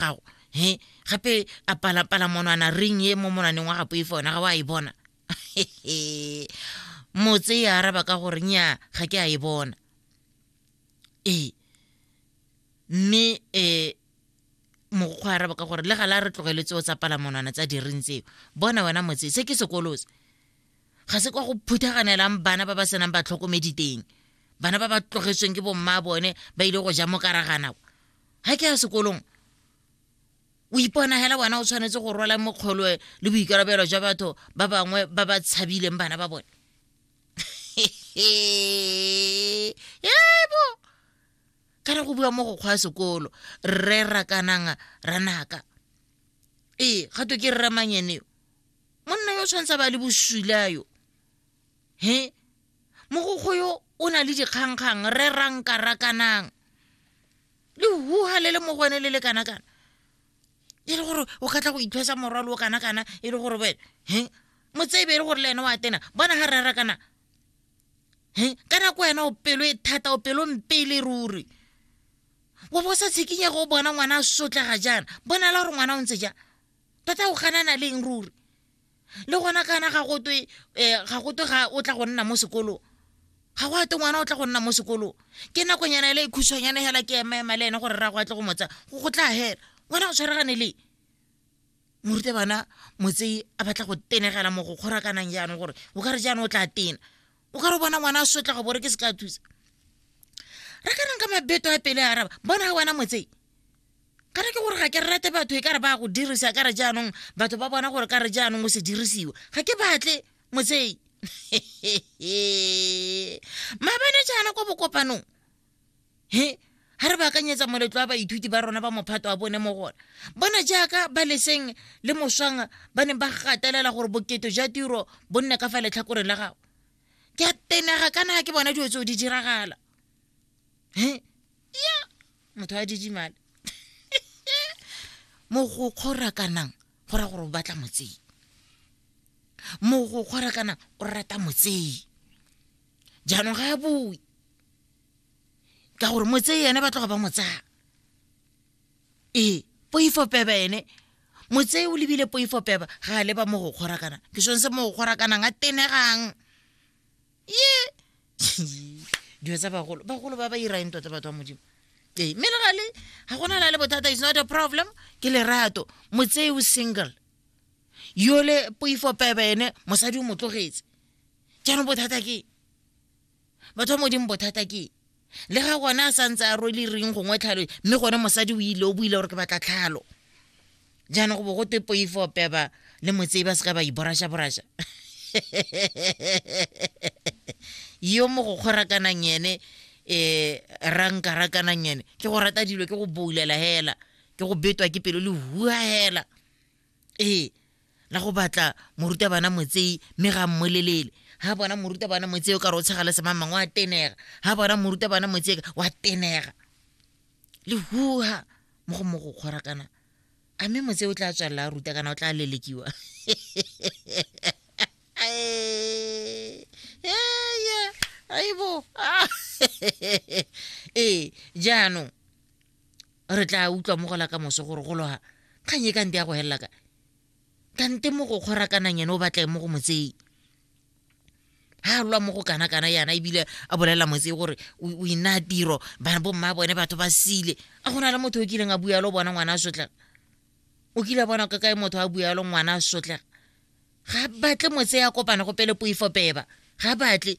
gago he gape a palapala monwana ring e mo monwaneng wa gapo e fona ga wa e bona motse e araba ka gore nya ga ke a e bona ee mme um mogokgo a araba ka gore le gala re tlogeletse o tsa palamonwana tsa diring tseo bona wena motse se ke sekolose ga se kwa go phuthaganelang bana ba ba senang batlhokomedi teng bana ba ba tlogetsweng ke bomma bone ba ile go ja mo karagana kwa ga ke ya sekolong o ipona hela wena o tshwanetse go rwala mokgolo le boikarabelo jwa batho ba bangwe ba ba tshabileng bana ba bone ebo ka re go bua mo go kgwa sekolo rre rakanang ranaka ee ga to ke rre manyeneo monna yo o tshwanetse ba le bosula yo he mogokgo yo o na le dikgangkgang re rankarakanang le huha le le mo go ene le le kana-kana e le gore o ka tla go ithwesa morwalo o kana-kana e le gore wena he motsebe e le gore le ene wa tena bona ga rera kana he ka nako wena o pelo e thata o pelo mpele ruri wa bo sa tshikinyego o bona ngwana a sotlega jaana bona la gore ngwana o ntse jang tota o ganana leng ruri le gona kana ga gotwe um ga gotwe ga o tla go nna mo sekolong ga go ate ngwana o tla go nna mo sekolong ke nakonyana ele e khuswanyane hela ke emaema le ene gore ra go atle go motsa go tla hela ngwana o tshwaregane le moruta bana motsei a batla go tenegela mo go kgorakanang jaanong gore o ka re jaanong o tla tena o ka re bona ngwana a sotla go bore ke se ka thusa re ka reng ka mabeto a pele araba bona ga wena motsei ka re ke gore ga ke rate batho e ka re ba go dirisa ka re jaanong batho ba bona gore ka re jaanong o se dirisiwa ga ke batle motsei maabane jaana kwa bokopanong he ga re baakanyetsa moletlo wa baithuti ba rona ba mophato wa bone mo gona bona jaaka ba leseng le moswang ba neng ba gatelela gore boketo jwa tiro bo nne ka fa letlhakoreng la gago ke a tenega kana ke bona dilo tseo di diragala he ya motho a didimale mogokgo rakanang go ra gore o batla motsei mogokgo rakanang o rata motsei jaanong ga a bue ka gore mo tseye ene ba tloga ba mo tsaya ee poifo peba ene mo tseye o lebile poifo peba ga a leba mo go kgorakana ke sone se mo go kgorakanang a tenegang ye dilo tsa bagolo bagolo ba ba irang tota batho ba modimo ee mme le gale ga gona la le bothata is not a problem ke lerato mo tseye o single yole poifo peba ene mosadi o mo tlogetse jaanong bothata ke batho ba modimo bothata ke le ga gone a sa ntse a rwele reng gongwe tlhalo mme gone mosadi o ile o buile gore ke batla tlhalo jaanong go bo go twe poifo peba le motsei ba seka ba iborasha-borasha yo mo go kgorakanang ene um rankarakanang ene ke go rata dilo ke go boulela hela ke go betwa ke pelo le hua hela ee la go batla morutabana motsei mme ga mmolelele ga bona morutabana motsei o ka re o tshega le semamang wa tenega ga bona morutabana motsei wa tenega le huha mo go mo go kgora kana a mme motse o tla tswalela a ruta kana o tla lelekiwa aibo ee jaanong re tla utlwa mo gola ka moso gore go loga kgang e ka nte ya go helela ka kante mo go kgorakanang ene o batlae mo go motsei ha lwa mo go kana kana yana ebile a bolelela motse gore o ina tiro bana bo mma bone batho ba sile a gona le motho o kileng a bua lo bona ngwana a sotla o kile a bona ka kae motho a bua lo ngwana a sotla ga batle motse ya kopana go pele poifo peba ga batle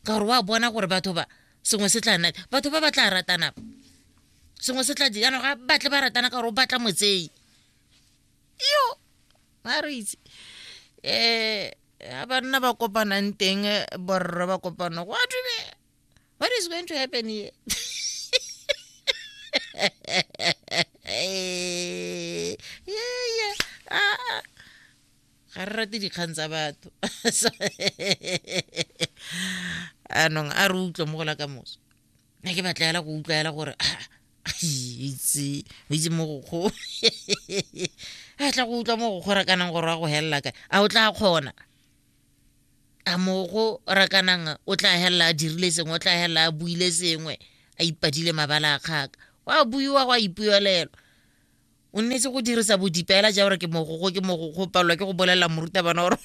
ka gore wa bona gore batho ba sengwe se tla nna batho ba ba tla ratana sengwe se tla jaanong ga batle ba ratana ka gore o batla motsei yo ba re itse um ga banna ba kopanang teng eh, borre ba kopana go adume what is going to happen here yeah, yeah. Ah, ah. ga re rate dikgang tsa batho anong a re utlwa mo go la ka moso ne ke batla ela go utlwa ela gore ah, itse o itse mo go kgo a tla go utlwa mo go kgorakanang gore wa go helela kae a o tla kgona a mogo rakanang o tla helela a dirile sengwe o tla helela a buile sengwe a ipadile mabala a kgaka wa buiwa go a ipuelelwa o nnetse go dirisa bodipeela ja gore ke mogokgo ke mogokgo o palelwa ke go bolelela morutabana gore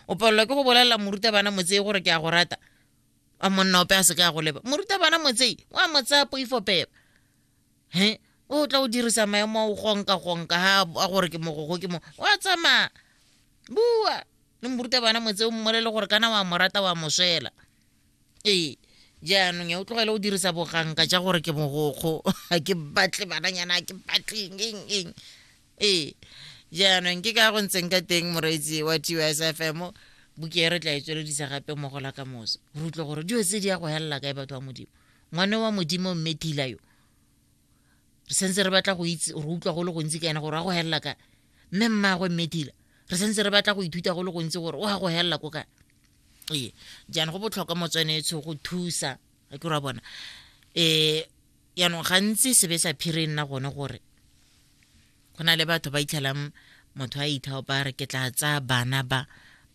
o palelwa ke go bolelela morutabana motsei gore ke a go rata a monna ope a se ka go leba morutabana motsei wa mo tsaya poifo peba he o tla o dirisa maemo a o gonka gonka ha a gore ke mogokgo ke mo wa tsamaya bua le morutabana motse o mmolele gore kana wa mo rata wa mo swela ee jaanong ya o tlogele o dirisa boganka ja gore ke mogokgo ga ke batle bananyana ga ke batleng eng eng ee jaanong ke ka go ntseng ka teng moreetsi wa tus fm buke e re tla e tsweledisa gape mo gola ka moso re utlwe gore dio tse di ya go helela kae batho ba modimo ngwane wa modimo mme thila yo re sentse re batla go itse re utlwa go le gontsi ka ena gore wa go helela kae mme mmagwe mme thila re sentse re batla go ithuta go le gontsi gore o ya go helela ko kae ee jaanong go botlhokwa motswanetsho go thusa ga ke ra bona um yaanong gantsi sebe sa phiri e nna gone gore go na le batho ba itlhelang motho a ithaopa re ke tla tsaya bana ba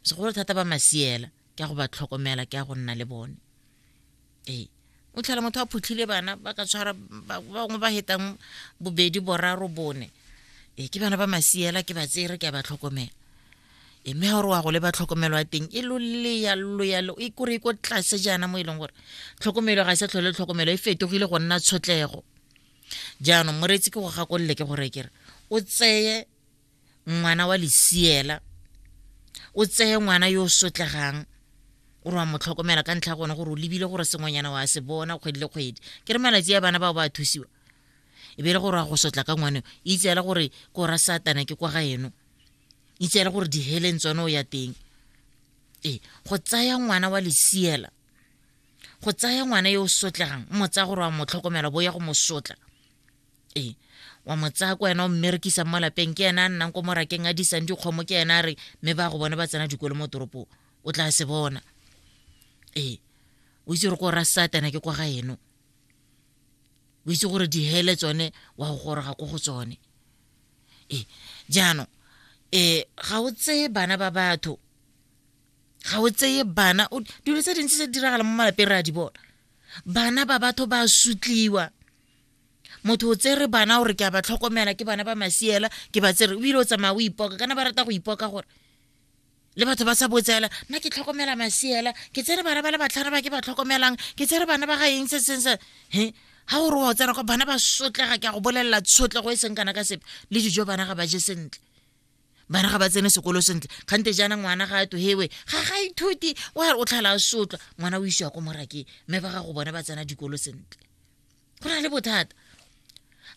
segolo thata ba masiela ke ya go ba tlhokomela ke ya go nna le bone ee o tlhela motho a phutlhile bana ba ka tshwara bangwe ba hetang bobedi boraro bone ee ke bana ba masiela ke ba tsere ke a ba tlhokomela e mme gore wa go le ba tlhokomelo ya teng e loleya loya e kore e ko tlase jaana mo e leng gore tlhokomelo ga e sa tlhole tlhokomelo e fetogile go nna tshotlego jaanong moreetsi ke go gakolole ke gore kere o tseye ngwana wa lesiela o tseye ngwana yo o sotlegang o re wa mo tlhokomela ka ntlha gone gore o lebile gore sengwenyana wa se bona kgwedi le kgwedi ke re malatsi a bana bao ba thusiwa e be le gore wa go sotla ka ngwane itse fela gore ko ra satana ke kwa ga eno itse fela gore diheleng tsone o ya teng ee go tsaya ngwana wa lesiela go tsaya ngwana yo o sotlegang mo tsaya gore wa mo tlhokomela bo ya go mo sotla ee wa mo tsaya ko wena o mmerekisang mo lapeng ke ena a nnang ko morakeng a disang dikgomo ke ena a re mme ba go bone ba tsena dikolo mo toropong o tla se bona ee o itse gore ko ra satana ke kwa ga eno o itse gore dihele tsone wa go goroga ko go tsone ee jaanong um ga o tseye bana ba batho ga o tseye bana dilo tse dintsi tse di diragala mo malapeng re a di bona bana ba batho ba sutliwa motho o tsere bana gore ke a ba tlhokomela ke bana ba masiela ke ba tsere ebile o tsamaya o ipoka kana ba rata go ipoka gore le batho ba sa botsela nna ke tlhokomela masiela ke tsere bana ba le batlhano ba ke ba tlhokomelang ke tsere bana ba ga eng se seng se he ga gore wa tsena kwa bana ba sotlega ke a go bolelela tshotlego e seng kana ka sepe le dijo bana ga ba je sentle bana ga ba tsene sekolo sentle kgante jaana ngwana ga a tohewe ga ga ithuti o re o tlhala a sotlwa ngwana o isiwa ko morakeng mme ba ga go bone ba tsena dikolo sentle go na le bothata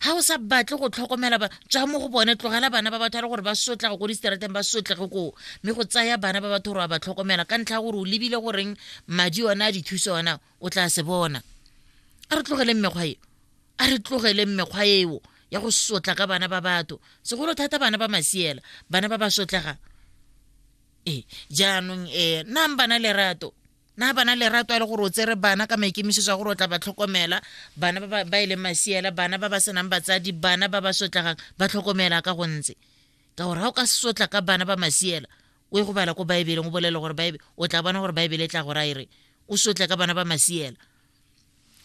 ga o sa batle go tlhokomela tswa mo go bone tlogela bana ba batho a le gore ba sotla go ko distraateng ba sotlege koo mme go tsaya bana ba batho gore wa ba tlhokomela ka ntlha ya gore o lebile goreng madi one a dithuso ona o tla se bona a re tlogeleng mekgwa e a re tlogeleng mekgwa eo ya go sotla ka bana ba batho segolo thata bana ba masiela bana ba ba sotlegang ee jaanong um nang bana lerato na bana lerato a le gore o tsere bana ka maikemisetso a gore o tla ba tlhokomela bana ba e leng masiela bana ba ba senang batsadi bana ba ba sotlagang ba tlhokomela ka go ntse ka gore ga o ka sotla ka bana ba masiela o e go bala ko baebeleng o bolele gore baebe o tla bona gore baebele e tla go raere o sotle ka bana ba masiela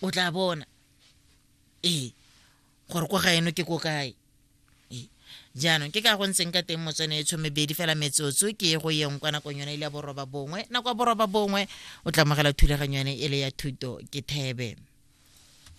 o tla bona ee gore ko ga eno ke ko kae jaanong ke ka go ntseng ka teng motswene e tshomebedi fela metsotso ke e go yeng kwa nakong yone ile ya boroba bongwe nako ya boroba bongwe o tlamogela thulaganyo yone e le ya thuto ke thebe